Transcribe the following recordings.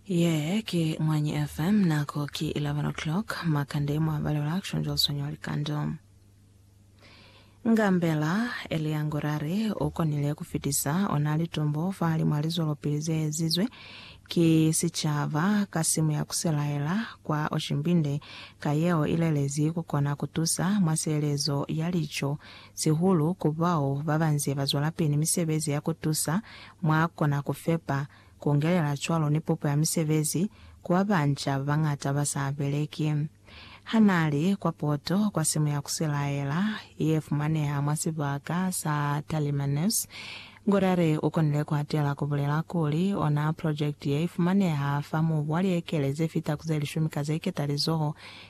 Ye ki Mwanyi FM, nako ki 11 o'clock, makande mwa balelwa kushonjwa uswanya likando. Ngambela, Elia Ngurare, u konile ku fitisa ona litumbo fahali mwa lizwelopili ze ezizwe ki sicaba ka simu ya ku selaela kwa Oshimbinde, ka yeo i lelezi ku kona ku tusa mwa sielezo ya lico sihulu ku bao ba ba nze ba zwelapili misebezi ya ku tusa mwa kona ku fepa, ku ngelela cwalo ni pupo ya misebezi ku ba banca ba bañata ba sa beleki. Ha n'a li kwa poto kwa simu ya ku silaela ye fumaneha mwa sibaka sa Talimanus, Godare u konile ku atela ku bulela kuli, Ona projekiti ye i fumaneha fa mubu wa liekele ze fita ku ze lishumi ka ze ketalizoho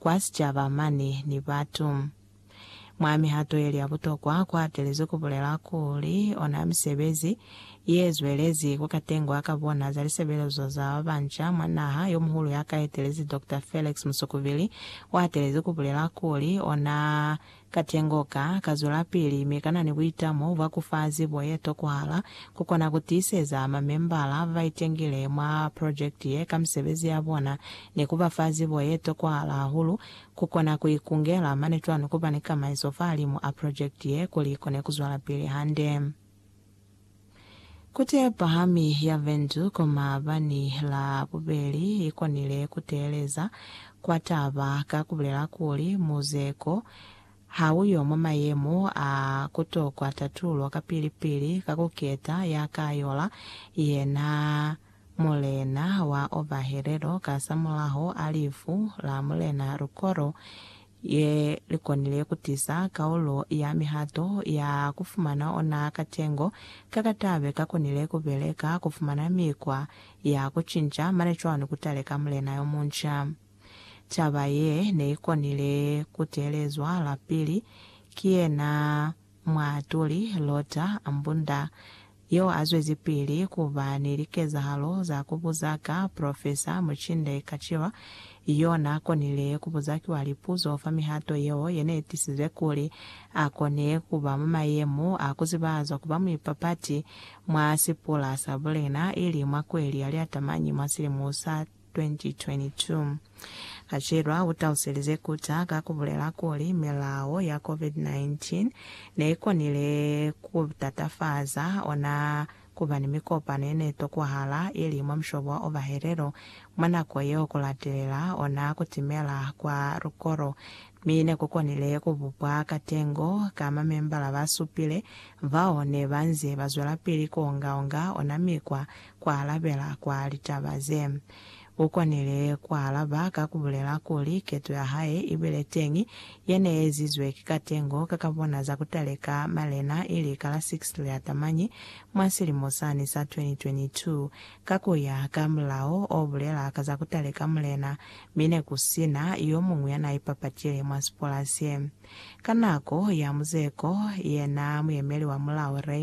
kwa sicaba mane ni batu. Mwa mihato yeli ya butokwa, ku hatelezwi ku bulela kuli ona misebezi ye zwelezi ku ka tengwa ka bona za lisebelezo za ba banca mwa naha. Yo muhulu ya ka etelezi Doctor Felix Musukubili u hatelezi ku bulela kuli ona Katengo ka ka zwelapili mi kana ni buita mo bwa ku fa zibo ye tokohala ku kona ku tiiseza mamembala ba ba itengile mwa prokjekiti ye ka misebezi ya bona ni ku ba fa zibo ye tokohala hahulu ku kona ku ikungela mane cwalo ni ku ba ni kamaiso fahalimu a prokjekiti ye kuli i kone ku zwelapili hande. Kute ya pahami ya vendu ko maabani la bubeli i konile ku teeleza kwa taba ka ku bulela kuli, Muze ko, ha u yo mwa mayemo a ku tokwa tatulo kapili-pili ka ku keta ya ka yola yena Mulena wa Obahelelo kasamulaho a lifu la Mulena Lukolo ye li konile ku tiza kaulo ya mihato ya ku fumana ona katengo ka ka tabe ka konile ku beleka ku fumana mikwa ya ku cinca mane cwani ku taleka mulena yo munca. Taba ye ne i konile ku teelezwa lapili ki yena Muatuli Lotta Mbunda, yo a zwezipili ku ba ni likezahalo za ku buza ka Profesa Muchinde Kachilwa, yo n'a konile ku buza kiwa lipuzo fa mihato yeo ye n'e tisize kuli a kone ku ba mwa mayemo a ku zibahazwa ku ba muipapati mwa sipula sa bulena, ili mwa kweli ya liatamañi mwa silimo sa 2022. Kachelwa u taluselize Kuta ka ku bulela kuli milao ya COVID-19 ne i konile ku tatafaza ona ku ba ni mikopano ye ne tokwahala i li mwa mushobo wa ovahelelo mwa nako yeo ku latelela ona ku timela kwa lukolo, mi ne ku konile ku bupwa katengo ka mamembala ba supile bao ne ba nze ba zwelapili ku onga-onga ona mikwa kualabela kwa litaba ze. U konile kualaba ka kubulela kuli keto ya hae i bile teñi, ye ne ezizwe ki katengo ka ka bona za kutaleka malena ili ka la 6 Liatamanyi mwa silimo sani sa 2022. Ka kuya ka mulao o bulela ka za kutaleka mulena, mi ne ku sina yo muñwi ya na ipapatile mwa sipola se. Ka nako ya muzeko, yena muyemeli wa mulao Ray.